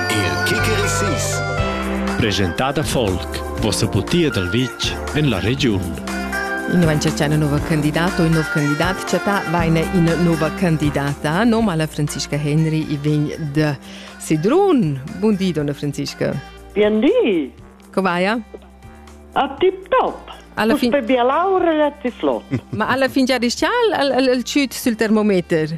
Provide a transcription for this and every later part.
Il Kikerisis Presentada folk Vossa butia dal vitg en la regiun Invan c'è c'è una nuova candidata o un nuovo candidato chatta vaine in nuova candidata nome alla Franziska Henry e vegn da Sedrun Buon dì donna Franziska Bien dì Covaia? A tip top alla fin... Uspe bia laura e ti flot Ma alla fin già dischal al, al, al ciut sul termometer?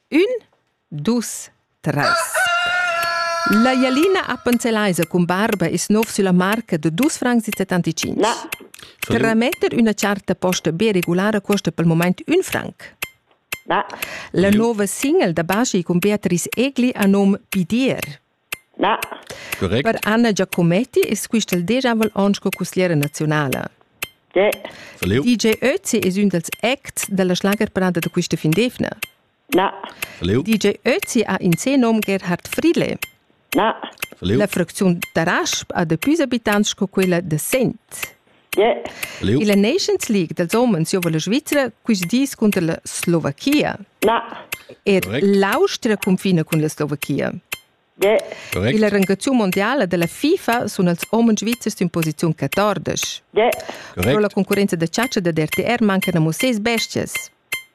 Ün, dus, tres. La jalina appenzellaisa cun barba es nouv sülla marca da dus francs e settantacinc. Na. Trametter üna charta posta be regulara cuosta pel mumaint ün franc. Na. La nouva single da Baschi cun Beatrice Egli ha nom Pidier. Na. Correct. Per Anna Giacometti es quistel deschanvel on sco cussiera naziunala. De. DJ Ötzi es ün dals acts da la schlagerparada da quista fin d'eivna. Na. DJ Ötzi ha in se nom Gerhard Friedle. Na. La fracziun da Rasp ha da püs abitants sco quella da Sent. Illa Nations League dals homens giova la Svizra quist dis cunter la Slovachia. Na. Ed l'Austria cunfina cun la Slovachia. Correct. Illa rangaziun mondiala da la FIFA sun els homens svizzers in posiziun 14. Correct. Però la concurrenza da chatscha da DRTR mancan amo seis bestias.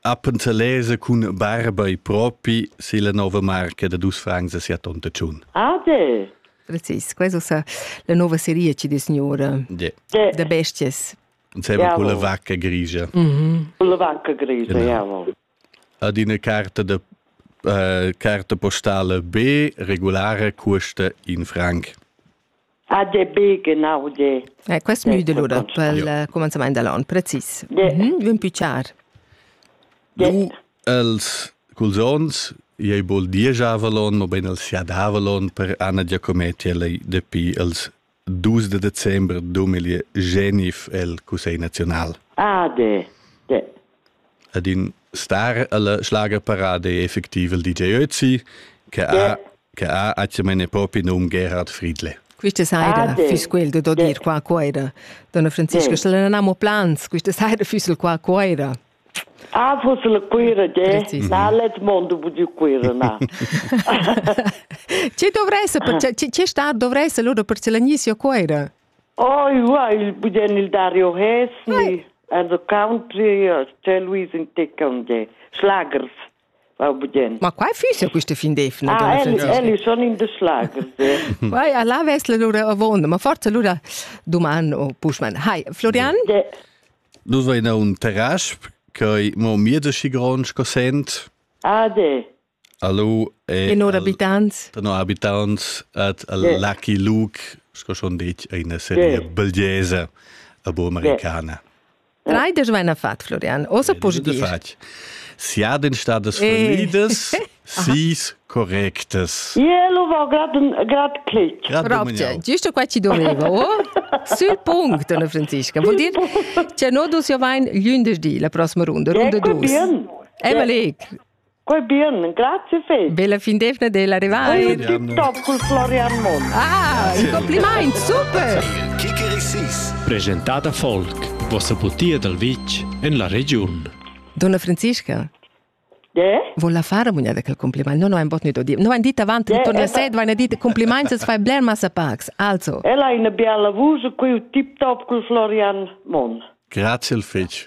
Appenzelese cun barba e propi se la nova marca da dus francs a sia tonta tschun. Adel! Precis, questo sa la nuova serie ci di signora yeah. da bestias. Insieme con la vacca grigia. Mhm. Con la vacca grigia, genau. jawohl. Ad una carta de uh, carta postale B regolare custa in franc. ha de be genau de Eh, quest müde l'ura pel eh, commenzament dell'on, precis. De- Mhm, Ün pü char. de Du els culs ons ei bol diesavalon, mobein els siadavalon per Anna Giacometti lei dapi els 2 de december 2009 el Cussegl Nazional. Ah, de, de, Ed in star alla schlagerparade è effectiv il DJ Özi che ha che ha atgamain propi num Gerhard Friedle. Questa saira ah, fiss quel da dir qua cuoira. Donna Franziska, se non amo plans, questa saira fiss il qua cuoira. Ah, fosse la cuira, de? Na, let mondo bu di cuira, na. Ci dovresse, ci sta dovresse loro per ce la nissia cuoira? Oh, ua, il budien il Dario Hesni, as o country, c'è Luis in Ticca un de. Schlagers va budien. Ma quai fissa questa fin d'efna? Ah, elli, elli sono in de schlagers. Vai, alla vesla lura avonda, ma forza lura domani o pushman. Hai, Florian? De. Du sei in un terrace, che mo mir de schi grand sco sent. Ah, de. Hallo e no abitants no abitants at al yeah. Lucky Luke sco schon detg eine serie yeah. belgese abo americana. Drei des Weihnachten fat, Florian. Osa positiv. Sie hat den Status verliedes, sie ist korrektes. Ja, lo war grad klich. Rabce, giusto qua ci dovevo, sul punct, Donna Francisca. Vuol dire, c'è no dus io vain glündesdi la prossima runda, runde dus. Emma Leg, Quei bien, grazie fetg. Bella fin defna della arrivai. Tip top col Florian Mond. Ah, un compliment, super. Presentata Folk, vostra butia dal vitg en la regiun. Donna Franziska. Yeah? Vola fare bugnà quel compliment. Non ho ein bot nit odib. No ein dit avant yeah, ritorni a sed, vain dit compliments es fai bler massa pax. Also. Ella è una bella vuce qui tip top col Florian Mon. Grazie al fetch.